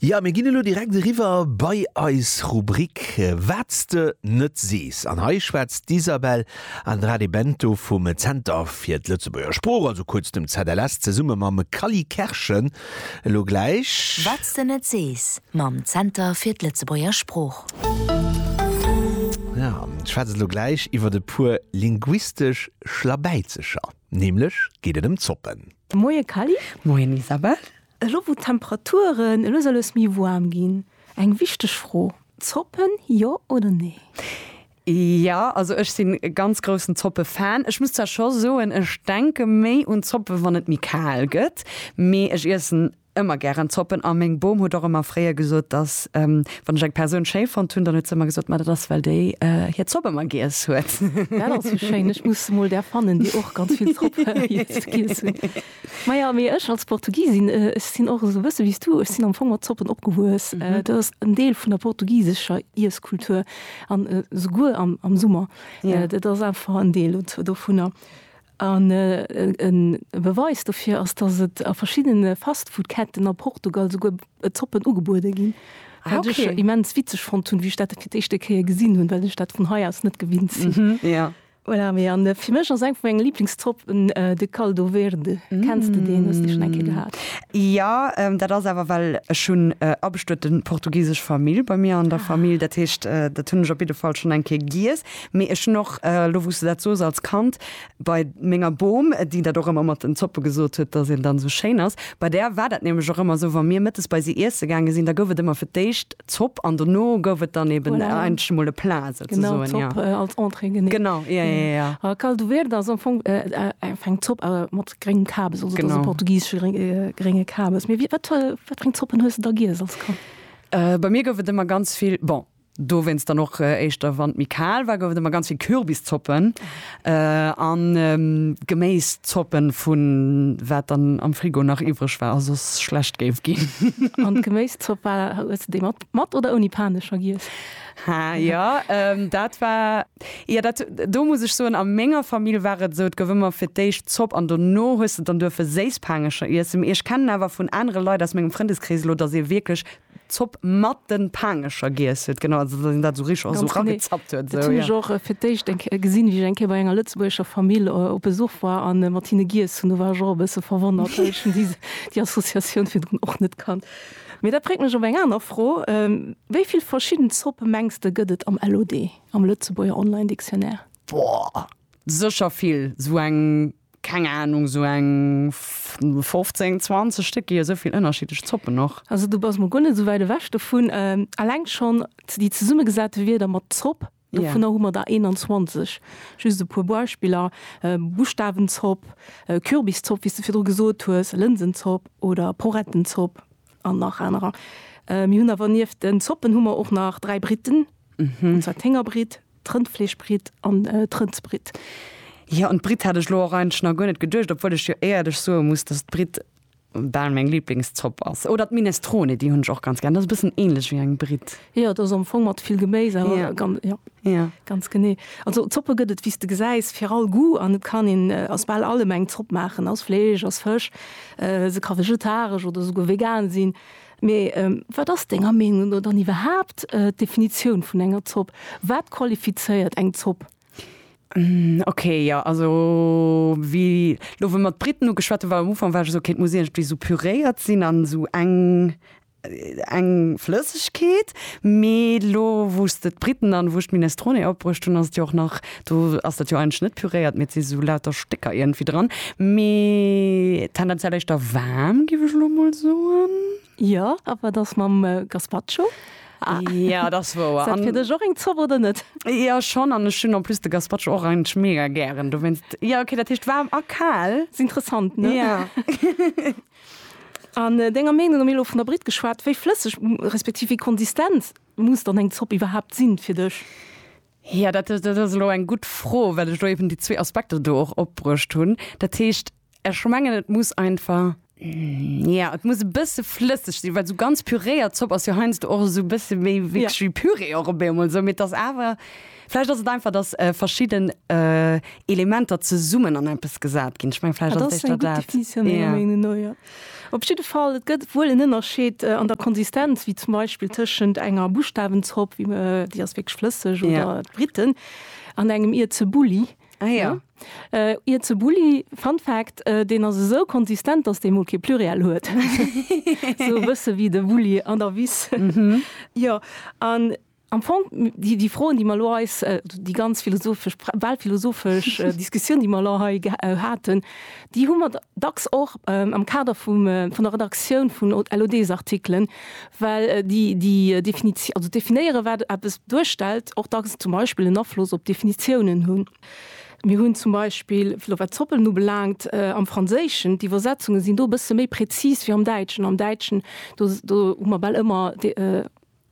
Jo, mir ginn elo direkt eriwwer bei eis Rubrik Wat s de net sees. An hei schwätzt d'Isabel Andrade Bento vum Zenter fir d'Lëtzebuerger Sprooch, also kuerz dem ZLS, zesumme mam Cally Kerschen elo gläich. Wat s de net sees mam Zenter fir d'Lëtzebuerger Sprooch. Jo, ech schwätze elo gläich iwwert e puer linguistesch Schlabäizecher. Nämlech geet et ëm Zoppen. Moie Kally. Moien Isabelle. Elo wou d'Temperaturen elo soll es méi woarm ginn, eng wichteg Fro, Zoppen jo oder nee? Jo, also ech sinn e ganz groussen Zoppe-Fan. Ech muss zwar scho soen, ech denke méi un Zoppe wann et méi kal gëtt, mee ech iessen Ëmmer gären Zoppen a meng Bom huet och ëmmer fréier gesot, dass wann ech eng Persoun schéi fonnt hunn, dann huet se ëmmer gesot, Ma dat ass well déi hir Zopp ëmmer giess huet. Dat ass jo schéin. Ech muss mol där fannen, déi och ganz vill Zopp giess hunn. Maja, mee ech als Portugisin, ech sinn och esou e bësse wéi s du. Ech sinn am Fong mat Zoppen opgewuess. Dat ass en Deel vun der portugisescher Iesskultur an souguer am Summer. Dat ass einfach en Deel dovunner. An e Beweis dofir ass, datt et a verschiddene Fastfood-Ketten a Portugal esouguer Zoppen ugebuede ginn. Ah, Wat ech okay. immens witzeg fonnt hunn, wéi ech dat fir d'éischte Kéier gesinn hunn, well ech dat vun hei aus net gewinnt sinn. Ja. Voilà, mee an fir mech ass eng vu menge Lieblingszoppen de Caldo Verde. Kenns de deen? Hues de schonn eng Kéier gehat? Ja, dat ass awer well ech hunn abestueten portugisesch Famill bei mir an der Famill, dat heescht dat hunn ech op jidde Fall schonn eng Kéier giess. Mee ech hunn och, elo wou s de dat sos, als Kand bei menger Bom, déi dat och ëmmer mat den Zoppe gesot huet, datt een dann esou schéin ass, bei där war dat nämlech och ëmmer esou, wa mir mëttes bei si iesse gaange sinn, da gouf et ëmmer fir d'éischt Zopp an dono gouf et dann eeben eigentlech emol e Plat souzesoen. Genau, Zopp als Entrée, genee. Genau, ja, ja, ja. A caldo verde ass am Fong eng Zopp mat gréngem Kabes, also et ass e portugisesche grénge Kabes. Mee wat fir eng Zoppen hues de da giess als Kand? Bei mir gouf et ëmmer ganz vill, bon, Dowéinst dann och éischter, wann et méi kal war, gouf et ëmmer ganz vill Kürbiszoppen an Geméiszoppen vu wat dann am Frigo nach iwwreg war a soss schlecht géif ginn. An d'Geméiszopp war, hues de déi mat oder ouni Panecher giess? Ha, jo, dat war, jo, dat, do muss ech soen, a menger Famill war et esou, et gouf ëmmer fir d'éischt Zopp an dono hues de dann duerfe Séisspanecher iessen. Mee ech kennen awer vun anere Leit aus mengem Frëndeskrees elo, datt ee wierklech Zopp mat den Paangecher giess huet, genau, also dass een dat sou richteg och sou rangezappt huet, sou, jo. Dat hunn ech och fir d'éischt eng Kéier gesinn, wéi ech eng Kéier bei enger lëtzebuergescher Famill op Besuch war a mat hinne giess hunn. Do war ech och e bësse verwonnert, well ech hunn déi, déi Associatioun virdrun och net kannt. Mee dat bréngt mech op eng aner Fro, Wéi vill verschidden Zoppe mengs de gëtt et am LOD, am Lëtzebuerger Online Dictionnaire? Boah, sécher vill, sou eng. keng Ahnung, sou eng 15, 20 Stéck, gi jo sou vill ënnerschiddlech Zoppen och. Also du bass mol guer net sou wäit ewech dovun. Alleng schonn déi zesummegesate Wierder mat Zopp, dovunner hu mer der 21. Just e puer Beispiller, Buschtawenzopp, Kürbiszopp, wéi s de virdru gesot hues, Lënsenzopp oder Porettenzopp an nach anerer. Mir hunn awer nieft den Zoppen hu mer och nach dräi Britten, an zwar d'Héngerbritt, D'Rëndfleeschbritt an d'Rëndsbritt. Jo, un d'Britt hat ech elo och eigentlech nach guer net geduecht, obwuel ech jo éierlech soe muss, dass d'Britt bal meng Liblingszopp ass. Oder d'Minestrone, déi hunn ech och ganz gär. Dat ass e bëssen änlech wéi eng Britt. Jo, dat ass am Fong mat vill Geméis, awer jo, ganz, jo, jo, ganz genee. Also Zoppe gëtt et, wéi s de gesäis, fir all Goût an et kann een aus bal allem eng Zopp maachen, aus Fleesch, aus Fësch. Se ka vegetaresch oder esouguer vegan sinn. Mee wat ass denger Meenung no dann iwwerhaapt d'Definitioun vun enger Zopp? Wat qualifizéiert eng Zopp? Ok, jo also wéi elo wou mer d'Briten ugeschwat hunn, war am Ufank war ech esou, ok et muss iergendwéi esou püréiert sinn an esou eng eng Flëssegkeet. Mee elo wou s de d'Briten an wou ech d'Minestrone opbruecht hunn, ass et jo och nach Do ass dat jo eigentlech net püréiert, mee et si sou lauter Stécker iergendwéi dran. Mee tendenziell éischter waarm, géif ech elo emol soen. Jo, a wat ass mam Gazpacho? Jo, dat ass wouer. Ass dat fir dech och eng Zopp oder net? Jo, schonn. An ech hunn en plus de Gazpacho och eigentlech mega gären. Dowéinst, jo, okay, dat heescht waarm a kal. Ass interessant, ne? Jo. An denger Meenung no, mir hu elo vun der Britt geschwat, wéi flësseg respektiv wéi konsistent muss dann eng Zopp iwwerhaapt sinn fir dech? Ja, dat ass elo eng gutt Fro, well ech elo eben déi zwee Aspekter do och opbruecht hunn. Dat heescht, ech mengen, et muss einfach, jo, et muss e bësse flësseg sinn, well esou ganz püréiert Zopp ass jo heiansdo och esou e bësse méi wierklech wéi Püree och ebe emol esou. Mee et ass awer, vläicht ass et einfach, dass verschidden Elementer zesummen an eppes gesat ginn. Ech meng, vläicht ass et éischter dat. Op jidde Fall, et gëtt wuel en Ënnerscheed an der Konsistenz, wéi zum Beispill tëschent enger Buschtawenzopp, déi ass wierklech flësseg, oder d'Briten, an engem Ierzebulli. Ah ja. Ierzebulli, Fun Fact, deen ass esou konsistent, datt dee mol kee Pluriel huet. Esou e bësse wéi de Bulli an der Wiss. Jo, an Am Fong, déi Froen, déi mer elo eis, déi ganz philosophesch, bal philosophesch Diskussioun, déi mer elo hei haten, déi hu mer dacks och am Kader vun der Redaktioun vun LOD-Artikelen, well déi Definitioun, also definéieren, wat eppes duerstellt, och dacks zum Beispill en Afloss op d'Definitiounen hunn. Mir hunn zum Beispill, elo wat Zoppen ubelaangt, am Franséischen, d'Iwwersetzunge sinn do e bësse méi prezis wéi am Däitschen. Am Däitschen, do hu mer bal ëmmer.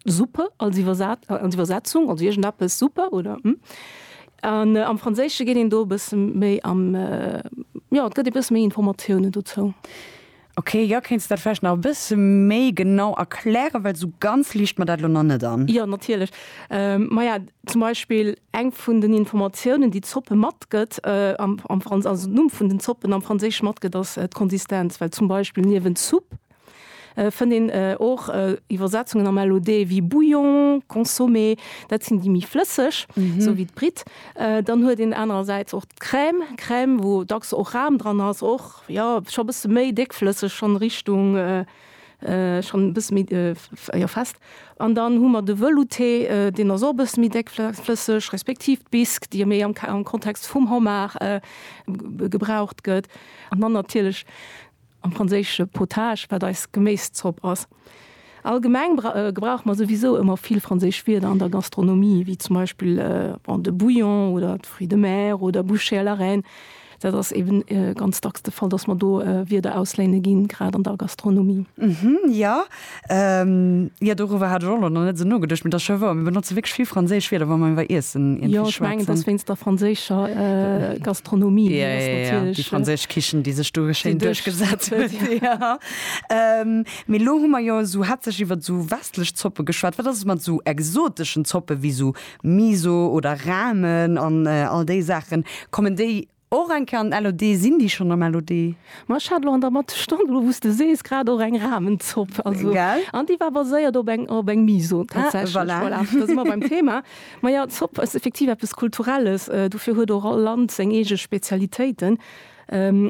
Suppe als Iwwersetzung, also iergendeppes, Suppe oder hm. An am Franséische geet een do e bësse méi am, jo, et gëtt ee bësse méi Informatiounen dozou. Ok, jo, kéints dat vläicht nach e bësse méi genau erklären, well esou ganz liicht mer dat elo nach net an. Jo, natierlech. Maja, zum Beispill eng vun den Informatiounen, déi d'Zoppe matgëtt, also den Numm vun den Zoppen am Franséische matgëtt, ass d'Konsistenz, well zum Beispill niewent Soupe. fënnt een och Iwwersetzungen am LOD wéi Bouillon, Consommé, dat sinn déi méi flësseg, esou wéi d'Britt. Dann huet een anerersäits och d'Crème, Crème, wou dacks och Ram dran ass, och jo scho bësse méi déckflësseg, schonn Richtung, schonn e bësse méi, jo fest. An dann hu mer de Velouté, deen ass och e bësse méi déckflësseg, respektiv d'Bisque, déi jo méi am Kontext vum Homard gebraucht gëtt. An dann natierlech. am franséische potage, wat eis Geméiszopp ass. Allgemeng gebrauche mer souwisou ëmmer vill franséisch Wierder an der Gastronomie, wéi zum Beispill de bouillon oder de fruits de mer oder bouchée à la reine. Dat ass eebe ganz dacks de Fall, datt mer do Wierder ausléine ginn, grad an der Gastronomie. Jo. Jo, doriwwer hat ech och nach net esou nogeduecht, mee dat ass scho wouer. Mir benotze wierklech vill franséisch Wierder, wa mer iwwer Iessen iergendwéi schwätzen. Jo, ech mengen, et ass wéinst der franséischer Gastronomie. Jo, jo, jo, jo, déi franséisch Kichen, déi sech do schéin duerchgesat huet. Mee elo hu mer jo esou haaptsächlech iwwer esou westlech Zoppe geschwat. Wat ass et mat esou exoteschen Zoppe wéi esou Miso oder Ramen an all déi Saachen? Kommen déi Och eng Kéier an den LOD. Sinn déi schonn am LOD? Ma ech hat elo an der Mathestonn, elo wou s de sees, grad och eng Rahmenzopp. Also, Gell? an déi war baséiert op eng, op eng Miso Ah, tatsächlech. voilà. Voilà, da si mer beim Thema. Ma jo, Zopp ass effektiv eppes Kulturelles. Dofir huet och all Land seng eege Spezialitéiten.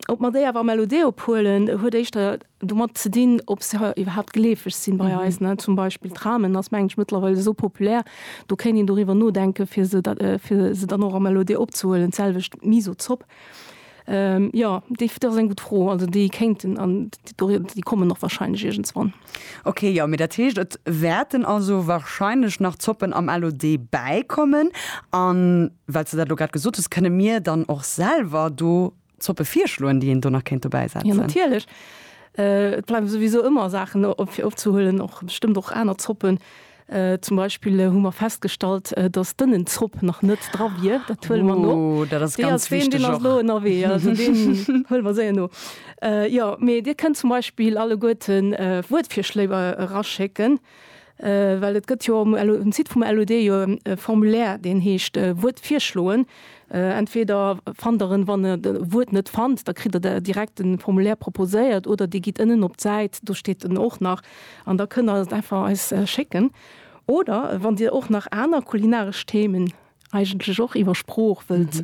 Ob mer déi awer am LOD. ophuelen, huet éischter domat ze dinn, ob se iwwerhaapt gleefeg sinn bei eis. Zum Beispill Tramen ass, mengen ech, mëttlerweil esou populär, do kéint een doriwwer nodenken, fir se fir se dann och am LOD opzehuelen. D'selwecht d'Miso-Zopp. Jo, déi dat ass eng gutt Fro. Also déi kéinten an déi kommen och warscheinlech iergendswann. Ok, jo, mee dat heescht, et wäerten also warscheinlech nach Zoppen am LOD bäikommen. An well s de dat elo grad gesot hues, kënne mir dann och selwer do Zoppe virschloen, déi een do nach kéint dobäi setzen? Jo, natierlech. Et bleiwen souwisou ëmmer Saachen op, fir opzehuelen, och bestëmmt och aner Zoppen. Zum Beispill hu mer festgestallt, dass d'Ënnenzopp nach net dra wier. Dat huele mer no. Oh, dat ass ganz wichteg och. Dee ass deen, deen ass elo ënnerwee. Also deen huele mer séier no. Jo, mee Dir kënnt zum Beispill alleguerten Wuertvirschléi eraschécken. Well et gëtt jo um Site vum LUD jo e Formulaire, deen heescht Wuert virschloen. Entweder fannt Der en, wann Der e Wuert net fannt, da kritt Der direkt de Formulaire proposéiert, oder Dir gitt ënnen op d'Säit, do steet en och nach, an da kënnt Der et einfach eis schécken. Oder wann Dir och nach aner kulinaresch Themen eigentlech och iwwer Sprooch wëllt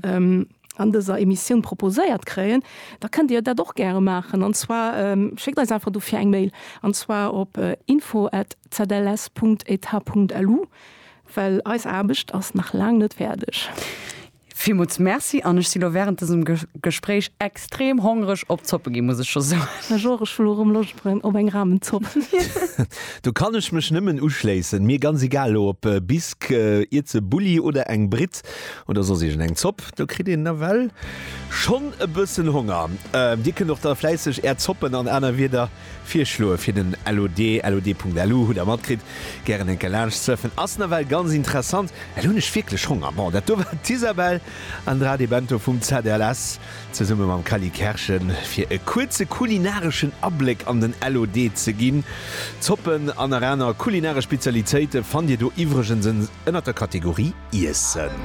an dëser Emissioun proposéiert kréien, da kënnt Dir dat och gäre maachen. An zwar schéckt eis einfach dofir eng Mail, an zwar op info at zls Punkt etat Punkt lu, well eis Aarbecht ass nach laang net fäerdeg. Villmools Merci an ech si lo wärend dësem Gespréich. Extrem hongreg op Zoppe ginn, muss ech scho soen. Ech och, ech hunn elo rëm Loscht op eng Ramenzopp. Do kann ech mech nëmmen uschléissen. Mir ganz egal elo op Bisque, Ierze Bulli oder eng Britt oder soss iergend eng Zopp, do kritt een nawell schonn e bëssen Honger. Dir kënnt och da fläisseg är Zoppen an aner Wierder virschloe fir den LOD. LOD.lu, hutt Der matkritt, gären eng Kéier laanscht surfen, ass nawell ganz interessant. Well hunn ech wierklech Honger. Bon, dat do war d'Isabelle Andrade-Bento vum ZLS. zesumme mam Cally Kerschen, fir e kuerze kulinareschen Abléck an den LOD ze ginn. Zoppen an nach aner kulinaresch Spezialitéite fannt Dir do iwwregens ënnert der Kategorie Iessen.